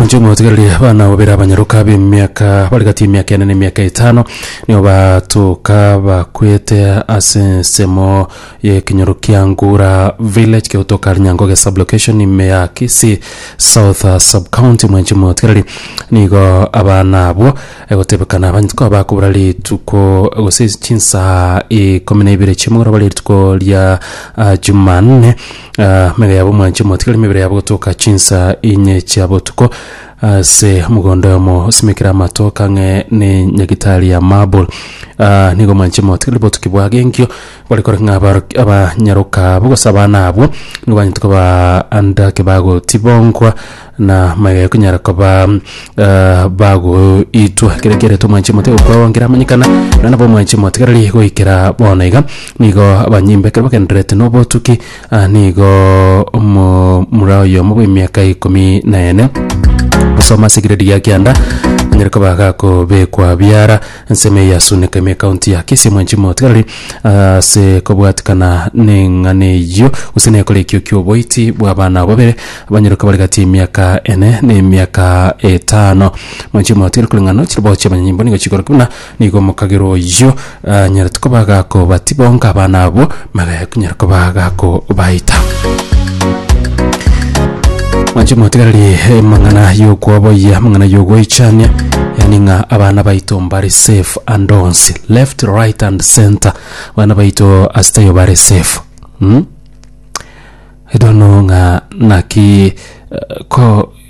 inche omotigareria abana babere abanyaroka b'emiaka bari gati y'emiaka ene na emiaka etano nigo batoka bakwete ase ensemo y'ekenyoro kia ngura village kegotoka rinyangoge sublocation ime ya kisi south uh, subcounty mwenche omotigareria nigo abana abwo egotebekana abanyete koba bakobora rituko gose chinsaha ikomi na ibere chiamogoro bare rituko ria uh, jumanne Amaiga yabo mwanche motigari emebere yabo gotoka chinsa inye chia botuko ase omogondo oyomo osimekire amatoke ang'e ne nyagitari ya marble Ah, nigo mwanche motigari botuki bwage enkio bare kore ng'a abaro- abanyaroka abo gose abana abwo nigo banyete koba andake bagotibongwa na maiga ekonyara koba bagoitwa ekero kiaretwe omwanchi omotiga gokora onkere amanyekana nonye nabo omwanchi omotigareri goikera bono iga nigo abanyimbo ekero bagendererete na obotuki ah, nigo omomura oyomo bwa emiaka ikomi na ene gosoma ase egiredi gia kianda anyare koba gakobekwa biara Ensemo eye yasundeka ime ekaunti ya Kisii omwanchi omotigarari ase kobwatikana neng'ana eyio gose nekorekio kioboiti bw'abana abo babere abanyorokire bare gati y'emiaka ene na emiaka etano. Mwanchi omotigarari koreng'ana na chiribao chi'abanyanyimbo nigo chikorokire buna nigo omokagera oyio anyarete koba agakobati bonka abana abwo Magega kunyara koba gakobaita. Mwanche motigarari emang'ana y'okwoboyia amang'ana y'ogoichania yani ng'a abana baito mbare safe and ons left right and center abana baito asiteyo bare safe mm? I don't know ng'a naki eh, ko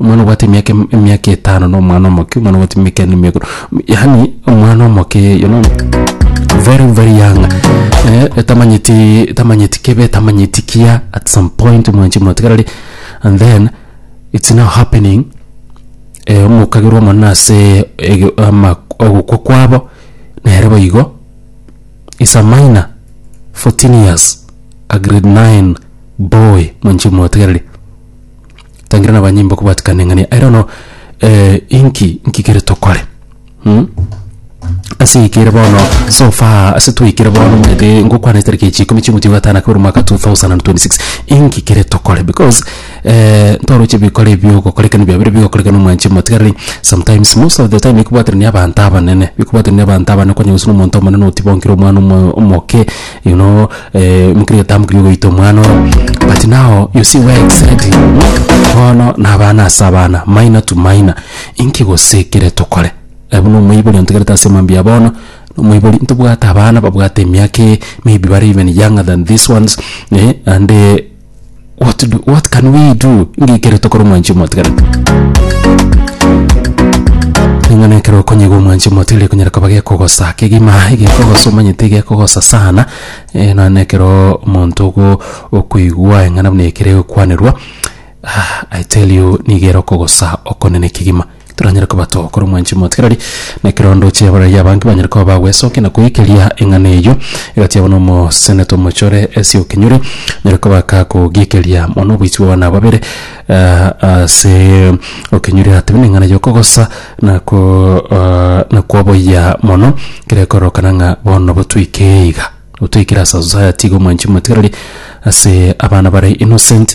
Omwana obwate emiaka em- emiaka etano na omwana omoke, omwana obwate emiaka ene na emiaka yaani omwana omoke you know very very young etamanyeti etamanyeti kebe etamanyeti kiya at some point mwanchi mwatigarari and then it's now happening omokagerwa omonene asee ege ama ogokwa kwabo nere bo igo is a minor fourteen years a grade nine boy mwanchi mwatigareri. Tangira na abanyimbo kobwatikana eng'ana ere bono inki inki kere tokore mh. Ase eke ere bono so far ase twaikire bono omanyete ngokwana etariki echi ikomi chia omweti owa gatano akabere omwaka 2026 inki kere tokore because ntoroche bikore ebi ogokorekana biabire bigokorekana omwanchi omotigareri sometimes most of the time ekobwaterania abanto abanene ekobwaterania abanto abanene kwanyora gose na omonto omonene otibonkire omwana omo omoke. You know, eh, mukiri otamukiri ogoita omwana oro but now you see where it's heading bono na abana ase abana minor to minor inki gose ekere tokore Eh, buna omoibori ontegerete ase mambia bono omoibori ntobwate abana babwate emiaka eye maybe bare even younger than this ones eh, and eh, what do, what can we do ng'a ekero tokora omwanchi omotigarete ning'o na ekero okonyigwa omwanchi omotigarete ekonyara koba gekogosa kegima egekogosa omanyete egekogosa sana eh, nonya na ekero omonto ogo okoigwa eng'ana buna ekero egokwanerwa I tell you niga ere okogosa okonene kegima. Toranyare koba too korwa omwanchani omotigarari, na ekerondo chi'abarari abange banyare koba bagwesokia na koikeria eng'ana eyio egatiabwa nomosenete omochore ase okenyori, onyare koba kakogiikeria mono oboichi bw'abana aba babere ase okenyori atebi neng'ana y'okogosa na ko na koboyia mono, ekero ekororokana ng'a bono nabo toikee iga, nabo toikire ase society iga omwanchi omotigarari ase abana bare innocent.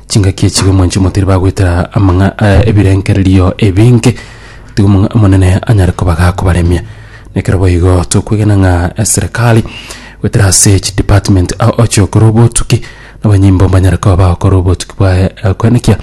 Chingaki echi bamwanche motari bagwetera amang'a- eh, ebirengererio ebinge, tiga omong'a- Omonene anyare koba gakobaremia. Nekero boigo tokwegena ng'a eserekari gwetera ase chidepartment ao ochia gokora obotuki, nabanyimbo mbanyare koba bagokora obotuki bwa eh, koenekia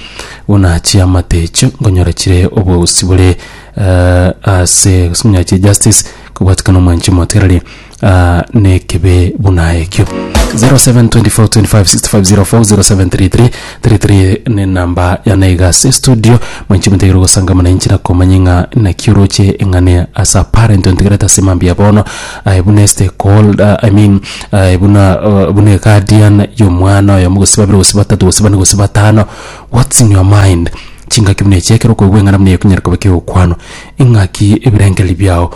buna chiamate echio nkonyora chire obogusii bore eh, ase gose onyache justice kobwatikana omwanchi motererie. ah, nekebe buna ekio 0724256504 0733 ne namba ya naiga se studio mwenche mutegere gosanga muna inchina komanya ng'a nakioroche eng'ane as a parent ontegerete ase mambi ya bono aye buna este called uh, i mean aye buna uh, buna guardian yomwana oyo gose babere gose batatu gose bane gose batano what's in your mind chingaki buna echiekero koigwa eng'ana buna ekunyerekobe keokwano ing'aki ebirenkeri biao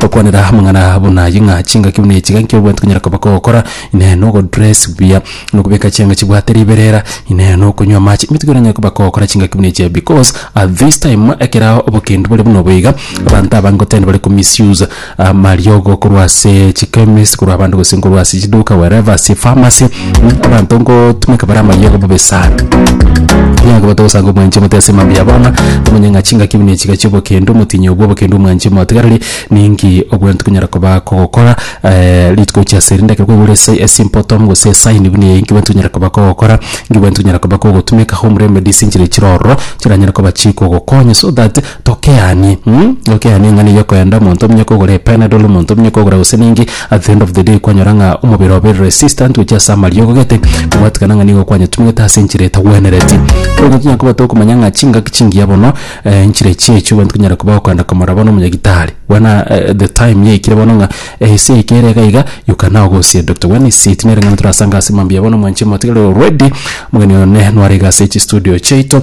Gokwanera amang'ana buna ayio ng'a chingaki buna echi iga nkio obwate konyara koba kogokora, Inee nogodress buya, nokobeka chianga chibwate riberera, Inee nokonywa amache, emetigo eranyare koba kogokora chingaki buna echi iga because at this time ekerao obokendu bore buna obo iga, abanto abange ngotendi bare ko misuse amariogo korwa ase chichemist, korwa abande gose nkorwa ase chiduka wherever ase epharmacy. mm, abanto nkotumeka bare amayega bobe sana Nyange bote gosanga omwanchi omote ase emambe ya bono omonyang'a chingaki buna echiga chi'obokendo omotinyi obwo obokendo omwanchi omotigareri ninki obwene tokonyara koba kogokora eh, rituko gochia ase rinde ekero kwaigure ase esimple tom gose esaini buna eye inki bwene tokonyara koba kogokora inki bwene tokonyara koba kogotumeka home remedies enchera echire ororo chiranyare koba chikogokonya so that Tokeanie mm tokeanie eng'ana eyio okoenda omonto omonye kogora epenadol omonto omonye kogora gose ninki at the end of the day kwanyora ng'a omobere obe resistant gochia ase amariogo gete gwatikana ng'a nigo kwanyetumete ase enchera etagwenereti. Bono tonya koba tokomanya ng'a chingaki chingiya bono enchera echi echi abanto konyara koba okoenda komorora bono omonyagitari buna the time yaikire bono ng'a esa eyio kere iga iga you can now go see a doctor when is it nere eng'ana torasange ase mambia bono mwanche motiga ready omogeni one nwarenge ase chistudio chiaito.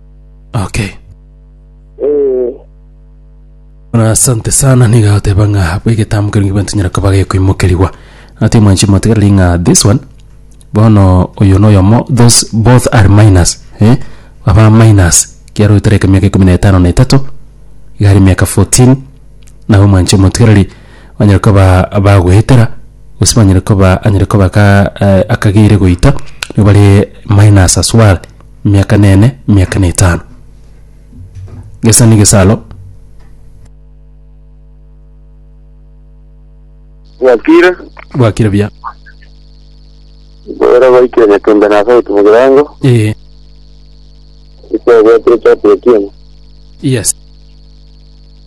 Okay. Eh, Buna asante sana niga oteba ng'a bwa egetambo kero ngibanto nyara koba gekoimokerigwa ati mwanchi motegereri ng'a this one bono oyo na oyomo those both are minus eh? aba minus kiaro oyotareka emiaka ikomi na etano na etato igare emiaka 14 nabo mwanchi omotegereri banyare koba bagoetera gose banyare koba anyare koba ka eh, akageire goita nigo bare minus as well miaka nene miaka netano gesa negesalo Bwakire, bwakire buya boera baikire nyatembe na sauti mu kirango, ee ise bwatire chati ya kiemo. yes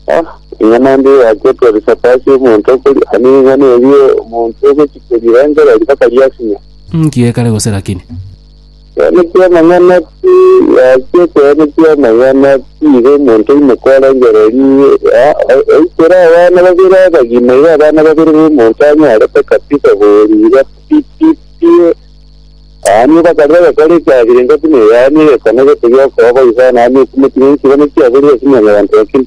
Ah, ing'ana ndi yaketwa risapasi omonto okori, ani ing'ana erie omonto ogochikorira engereri bakariasinya. nkiekare gose lakini Ekeene ki'Omonene tigoachia ekeene ki'Omonene, tiiga omonto oimoka orengererie, oikera abana babere abagima, iga abana babere b'omonto anyorete kabisa koriira pi pi pie. Yaani obakarire agakora echafiri engaki na yaani egekone gete gi'okoba, igo yaani okumotire enchera, naki aborire ase mwanyabanto, lakini.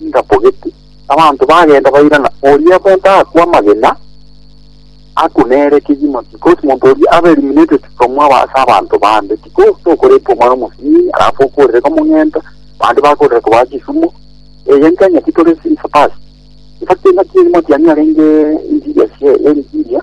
ingabogete. Abanto bagenda bairana, oria bonto akwe amagena, aku nere kegima, because monto oria abe eliminated from aba ase abanto bande, because tokoreta omwana omosinyi, alafu okorere komong'enta, bande bakorera kobaa chisumo, eye nki ang'eti tore since past. In fact engaki eri motiani arenge interior share, interior.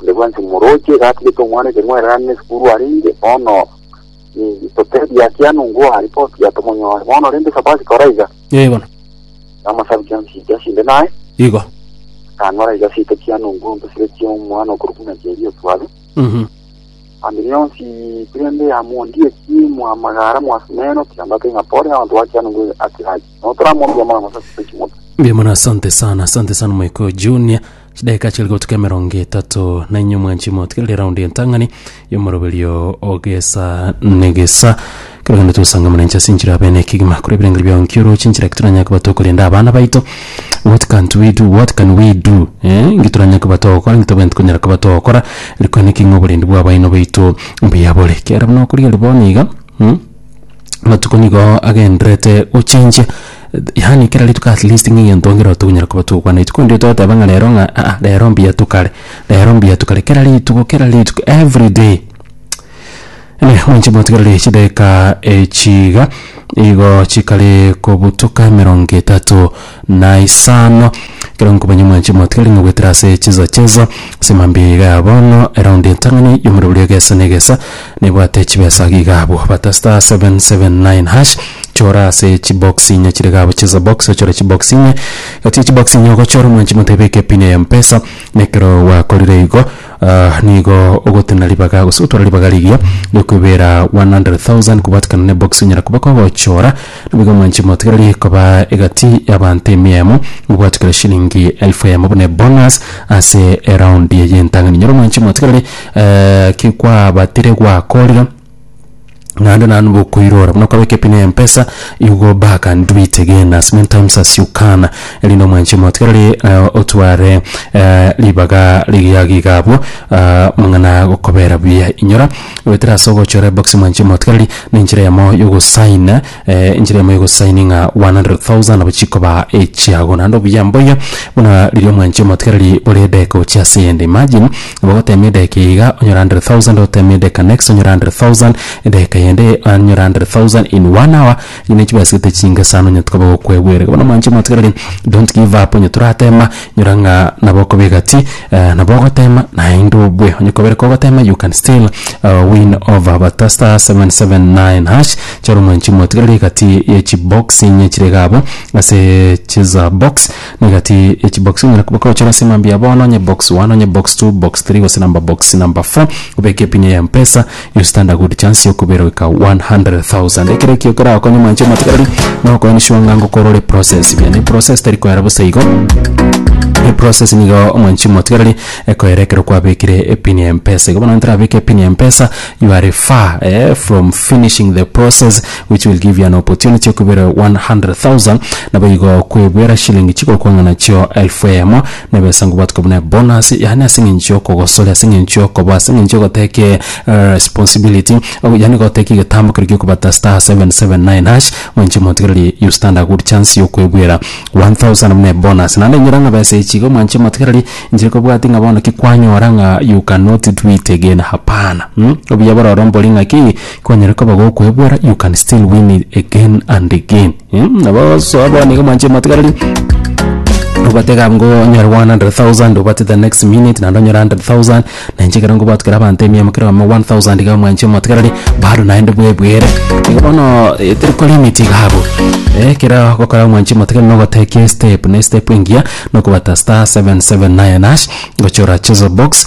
Onde bwensi omoroche gatigete omwana ekenwa ererane nesukuru arenge, bono ninki totebi akia nungo aa ripoti ya tomonyore. Bono rende Sabasika ora iga, Ee bono. na amasabi chionsi chiria chinde naye, Igo. akang'ora iga asete kia nungo embesire chia omwana okorwa buna chiaria otware, Mhm. ande rionsi pi rende yamondieti mwa amagara mwa asumeno, kiambato ing'a pore, abanto bakia nungo atigache. Notoramomia mono gose tose chimotwe. Mbuya mono asante sana asante sana moiko junior chidakika chiri gotuka emerongo etato na inyo mwanchi motigerire round entang'ani yomoroberio ogesa negesa kero gende twesanga mwananchi ase enchera abene ekigima kore ebirengeri biao nkioroche enchera ki toranyare koba tokorenda abana baito what can't we do what can we do eh ngi toranyare koba togokora ngi tobwenti konyara koba togokora rikwane ki ng'a oborendi bwa abaino baito mbuya bore kiara buna okorigereria bono iga mm? amatuko nigo agenderete gochenjia yaani kera rituko at least ng'a egento nkere tokonyara koba togokwana rituko ndio togoteba ng'a rero ng'a aa rero mbuya tokare rero mbuya tokare kera rituko kera rituko everyday eeh mwanche mwatigereri chidakika echi iga igo chikare kobutoka emerongo etato. na isano. Ekero nkomanya omwanchani mwatigari ng'a goetera ase chinsa chinsa ase mambia eye igaa bono eround entang'ani y'omorobori egesa na egesa nebwate chibesa iga iga abwo bata star seven seven nine hash chora ase chibox inye chire iga abwo chinsa box ochore chibox inye egati ya chibox inye ogochora omwanchi motebe beka epin ya mpesa na ekero gwakorire igo nigo ogotena ribaga gose otware ribaga rigiya rigokoebera one hundred thousand kobwatikana na ebox onyara koba kogochora. Naboigo mwanche motiga riria ekoba egati y'abaanto emia emo, mobwate kera shillingi elfu eyemo buna ebonus ase eround eye y'entang'ani. Nyoro mwanche motiga riria eh, ki kwabatire gwakorire naende nanu bokoirora buna okabeka epin ya mpesa you go back and do it again as many times as you can erinde omwanche motiga riria eh, otware eh, ribaga rigiagiga abwo ah, mang'ana gokobera buya inyora goetera ase ogochora eboxi mwanche motigareri na enchera eyemo y'ogosign eh, enchera eyemo y'ogosign ng'a 100,000 nabo chikoba echiago naende obuya mboyo buna riria omwanche motigareri bore edeka ochia ase eyende imagine nabo ogotemia edeka eye iga onyore 100,000 otemie edeka next onyore 100,000 edeka yende onyore 100,000 in one hour Nigo chibasete chinke sana onye tokoba gokwegwera iga bono mwanche mwatigereri don't give up onye toratema nyora ng'a nabo okoba egati nabo ogotema naende obue onye kobere kogotema you can still win over but ta star seven seven nine hash charo mwanche mwatigereri egati ya echibox chire iga abwo ase cheza box na egati ya echibox onyare koba okogochora ase mambia bono onye box one onye box two box three gose number box number four obeke epini ya mpesa. You stand a good chance yokobera goika 100,000. Ekero ekio keragokonye mwanche omatigareri na okoenisiwa ng'a ngokora ore process buya. Ne process tari koera bosa igo. E process nigo mwanchi omatigareri ekoera ekero kwabekire epin ya Mpesa. Igo bono gento orabeke epin ya Mpesa you are far eh from finishing the process which will give you an opportunity yokobera 100,000 naboigo kwebera shilingi chigokwana nachio elfu eyemo. Nebe esango bwatoke buna ebonus, yaani ase eng'encho y'okogosoria, ase eng'encho y'okoboa, ase eng'encho y'ogoteki responsibility, ogo yaani goteki egetambo keria giokobata star seven seven nine hash, mwenche motigereri you stand a good chance y'okoebuera one thousand buna ebonus. Naende inyora ng'a besa echi igo mwanche motigereri inche kobwati ng'a bono ki kwanyora ng'a you cannot do it again, hapana mh, obuya bororo mbori ng'aki, kwanyare koba gokoebuera you can still win it again and again. Mm, nabo soa bono iga mwanche matigareri obate gab ngo onyore 100000 obate the next minute naende onyore 100000 nainche ekero ngobatukera abanto emiemo kero amo 1000 iga mwanche motigareri bado naende bwebwere igo bono eh, teri kwa limit iga abwo eh, kero gokora mwanche motigareri nogotekia estep na estep engiya nokobata star 779 hash gochora chezo box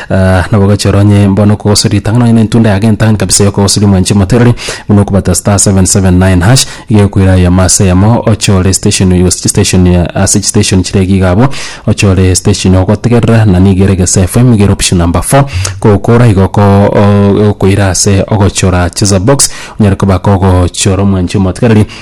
Ah, nabogochi oro onye mbono okogosori ritang'ani onye nentunda ya gentang'ani kabisa yokogosori omwanchi omoterori buna okobata star 779 hash iga egokoira eyemo ase eyemo ochore station igo station ya ase chistation chire iga iga abwo ochore station ogotegerera na niga ere gese FM iga ere option number four kogokora igo oko o- okoira ase ogochora cheza box onyare koba kogochora omwanchi omotigereri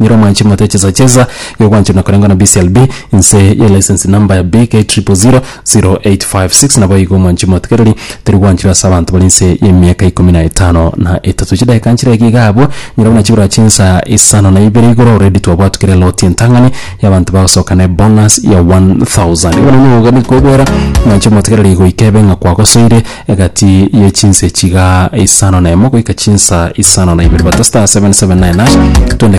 Nyiro mwanchi mote chesa chesa igo gwanchire na korengwa na BCLB inse ye license number ya BK 000856 naboigo mwanchi motigereri teri gwanchirwa ase abanto bari inse ye miaka ikomi na etano na etato chidakika nchire iga iga abwo nyiro buna chibura chinsa isano na ibere igoro already twabwatu kere loti entang'ani ya abanto bagosoka ne bonus ya 1000 igo nonye igo nigo kobwera mwanchi motigereri goika ebe ng'a kwagosoire egati ye chinsa echiga isano na emo goika chinsa isano na ibere bata star 779 hash twende.